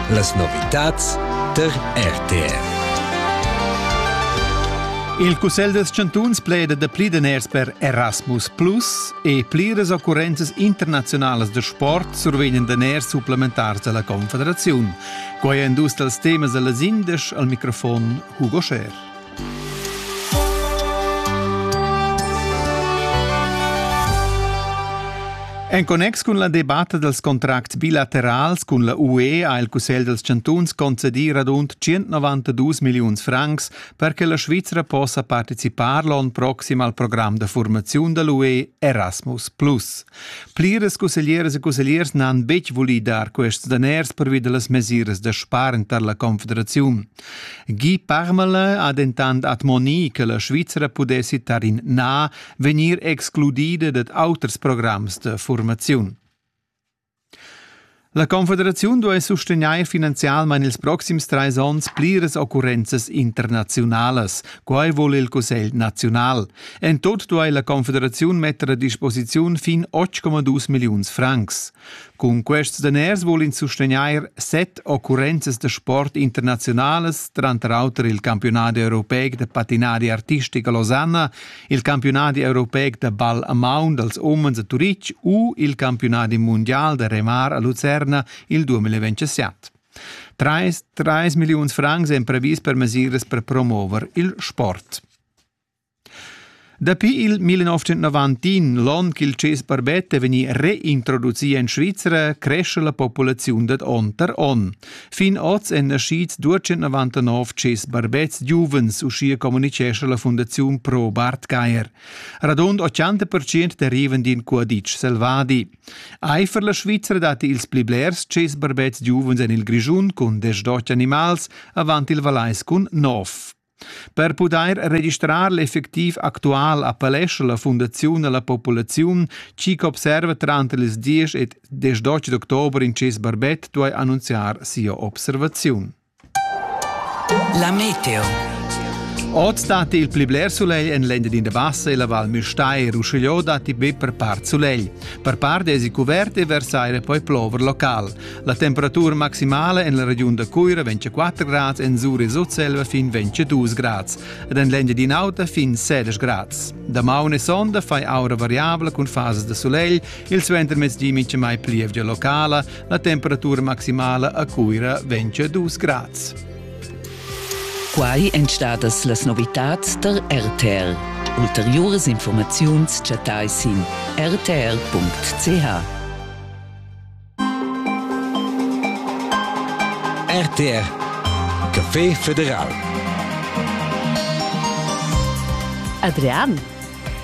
Las novitads tar RTF. Il Cussegl dels Chantuns pleda da pli daners per Erasmus Plus e pliras occurrenzas internaziunalas da sport survegnan daners supplementars dalla Confederaziun. Quei è dus dals temas dalla Sindesch al microfon Hugo Scher. En connex cun la debatta dals contracts bilaterals cun la UE ha il Cussegl dals chantuns concedì radund 192 milliuns francs per che la Svizra possa participar l'onn proxim al program da formaziun da l'UE Erasmus+. Pliras cusseglieras e cussegliers n'han betg vulì dar quests daners pervi da las mesiras da spargn tar la Confederaziun. Guy Parmelin ha dentant admonì che la Svizra pudessi tar in na vegnir excludida dad auters programs da formaziun. La Confederaziun duai sustegnair finanzialmain ils proxims trais onns pliras occurrenzas internaziunalas. Quai vul il Cussegl naziunal. En tut duai la Confederaziun metter a disposiziun fin 8,2 milliuns francs. Cun quests daners vul ins sustegnair set occurrenzas da sport internaziunalas, tranter auter il campiunadi europeic da patinari artistic a Losanna, il campiunadi europeic da ball a maun dals umens a Turitg u il campiunadi mundial da remar a Lucerna il 2027. 3, 3 milliuns francs èn previs per mesiras per promover il sport. Dapi il 1990, l'onn ch'il tschess barbet è vegnì reintroducì en Svizra, cresce la populaziun dad onn tar onn. Fin oz èn naschids 299 tschess barbets giuvens, uschia communitgescha la Fundaziun Pro Bartgeier. Radund 80% derivan d'in cuaditsch selvadi. Eifer la Svizra datti ils pli blers tschess barbets giuvens en il Grischun cun desch d'otg animals, avant il Valais cun nov. Per pudair registrar l'effectiv actual appellescha la Fundaziun a la populaziun, chi ch'observa tranter ils 10 ed 18 d'october in ses barbet duai annunziar sia observaziun. La meteo. Oz datti il pli bler sulegl en l'Engiadina Bassa e la Val Müstair. Uschigliò datti be per part sulegl. Per part èsi cuvert e versaire poi plover local. La temperatura maximala en la regiun da Cuira vegn 4 grads, en Sur e Sutselva fin 22 grads ed en l'Engiadin'Auta fin 16 grads. Damaun e sonda fai aura variabla cun fases da sulegl, il suentermezdi mincha mai plievgia locala, la temperatura maximala a Cuira vegn 2 grads. Quai èn stadas las novitads tar RTL. Ulteriuras informaziuns chattai sin rtr.ch. RTR Café Federal Adrian,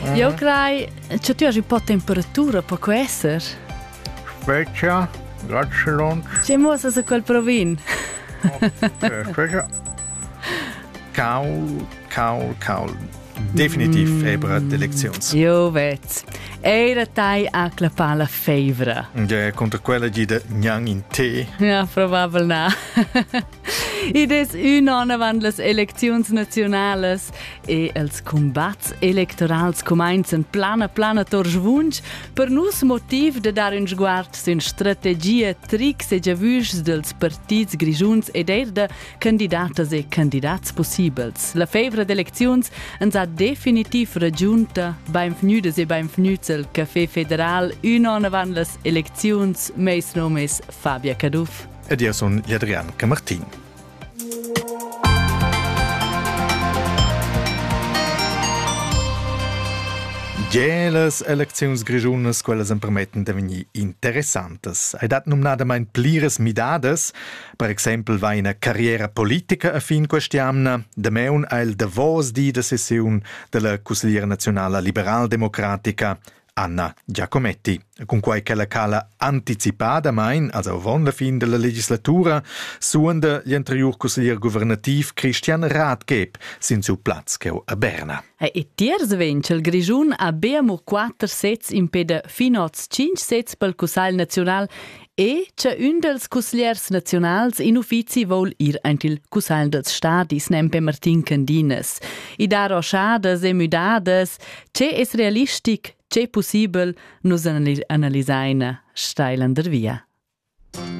mm. io crei che tu hai un po' temperatura, può essere? Svecchia, grazie Lund. Ci muossa su quel provin. oh, Svecchia. Caul, caul, caul. definitiv ebra d'elecziuns. Jo vet. Era tai a clappar la fevra. Ja, contra quella gida gnang in te. Ja, probabel na. Id es ün on avant las elecziuns naziunales e els combats electorals cumainzan plana plana tor svunch per nus motiv de dar ün sguard sün strategia, tricks e giavüschs dels partits grigiuns ed eir de candidatas e candidats pussibels. La fevra d'elecziuns ens ha definitiv ragiunta beinvgnüdas e beinvgnüts el Café Federal ün on avant las elecziuns, meis nom es Fabia Caduff. Ed io sun Adrian Camartin. Ge las elecziuns grischunas quellas empermetten da vegnir interessantas. Ei dat numnadamain pliras midadas, Per exempel va ina carriera politica a fin quest'jamna. Damaun ha il davos di da sessiun della cusgliera nazionala liberaldemocratica Anna Giacometti. Cunquai che la cala anticipadamain, also avon la fin della legislatura, suonda gli anterior cusglier guvernativ Christian Radgeb sin su plaz cheu a Berna. E tiers vegn il Grischun a beamur quatter sets in peda fin oz cinc sets pel Cussagl nazional E cha ün dals cusgliers naziunals in uffizi voul ir aint il cussagl dels stadis nempe Martin Candinas. I dar oschadas e müdadas, che es realistic, che possibel, nus analisaina Steilander via.